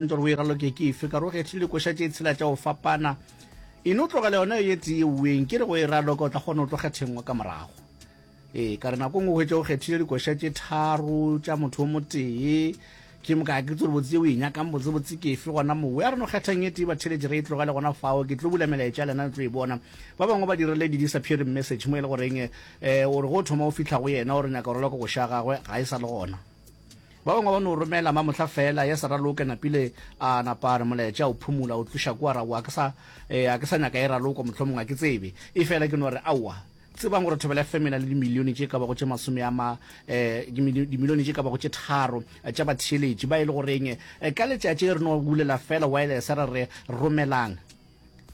Ntoro o e raloke ke efe? Ka re o kgethile dikoša tše tshela tša go fapana. E no tlogela yona ye tee e ueng, ke re go e raloka o tla kgona go tlo kgethengwa ka morago. Ee, ka re nako ngwe o hwetše o kgethile dikoša tše tharo tša motho o motee. Ke moka ke tsore botse o e nyakang botse botse ke efe gona mowe. A re no kgethang ye tee batheletši re e tlogele gona fao. Ke tlo bula melaetša lena le tlo e bona. Ba bangwe ba dirile di-disappearing message mo e le goreng um o re go thoma o fihla go yena o re nyaka go raloka koša ya gagwe ga e sa le gona. Ba bangwe ba no romela mamohla feela, yes Raloke napile a napa a re moletša o phumula o tluša kua ra wa ke sa eh, a ke sa nyaka e raloko mohlomong a ke tsebe e fela ke no re aowa tsebang gore thobela fm e na le dimilione tše ka bago tše masome a ma eh, dimili- dimilione tše ka bago tše tharo eh, tša batheeletši ba e le goreng eh, ka letšatši re no bulela feela wireless ra re romelang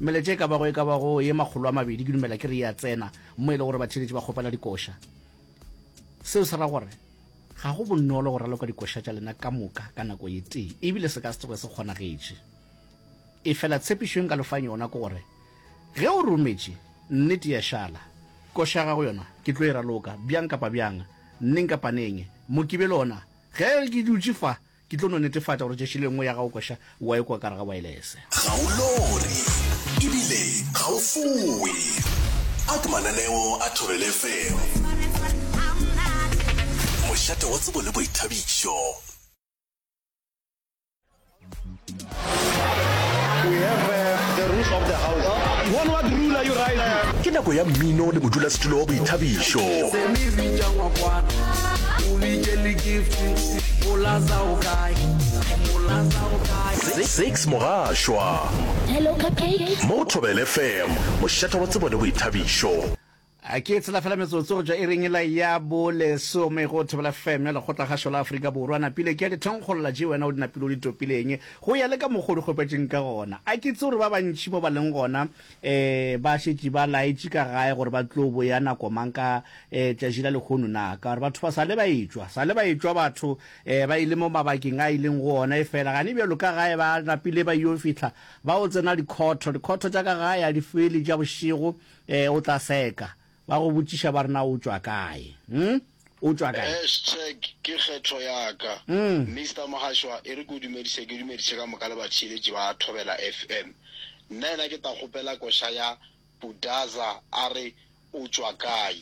meletša e ka bago e ka bago ye makgolo a mabedi ke dumela ke re ya tsena mo e le gore batheeletši ba kgopela dikoša seo se ra gore Ga go bonolo go raloka dikoša tša lena ka moka ka nako ye tee, e bile se ka se tsoge se kgonagetše. Efela tshepišo ye nka le fang yona ke gore ge o rometše, nnete ya šala. Koša ya gago yona ke tlo e raloka bjang kapa bjang, neng kapa neng. Mokibelo wona, ge ke dutše fa, Ke tlo no netefatša gore tšešo le nngwe ya gago koša o a e kwa ka gare ga waelese. Ga o lore ebile ga o fowe. Ak mananeo a Thobela FM. Mošate wa tsebo le boithabišo. Ke nako ya mmino le modulasetulo wa boithabišo. Six Mogašwa mo go Thobela FM, mošata wa tsebo le boithabišo. A Ke tshela fela metsotso go tšwa iring ela ya bolesome go Thobela FM ya Lekgotlakgašo la Afrika Borwa. Napile ke a di thonkgolola tše wena o di napile o di topileng go ya le ka mokgwa o di kgopetšeng ka gona. A Ke itse gore ba bantši mo ba leng gona um ba šetše ba laetše ka gae gore ba tlo boya nako mang ka um tšatši la lehono na, ka gore batho ba sa le ba etšwa, sa le ba etšwa batho um ba ile mo mabakeng a ileng go ona. Efela gane bjalo ka gae ba napile ba yeo fihla ba o tsena dikhotho, dikhotho tša ka gae a di fele tša bošego. Ee, o tla seka. Ba go botšiša ba re na o tšwa kae. Hm? O tšwa kae? Hashtag ke kgetho ya ka. Mister Mohashwa, e re ke o dumedise, ke dumedise ka moka le batheeletši ba Thobela FM. Nna yena ke ta kgopela koša ya Budaza a re o tšwa kae.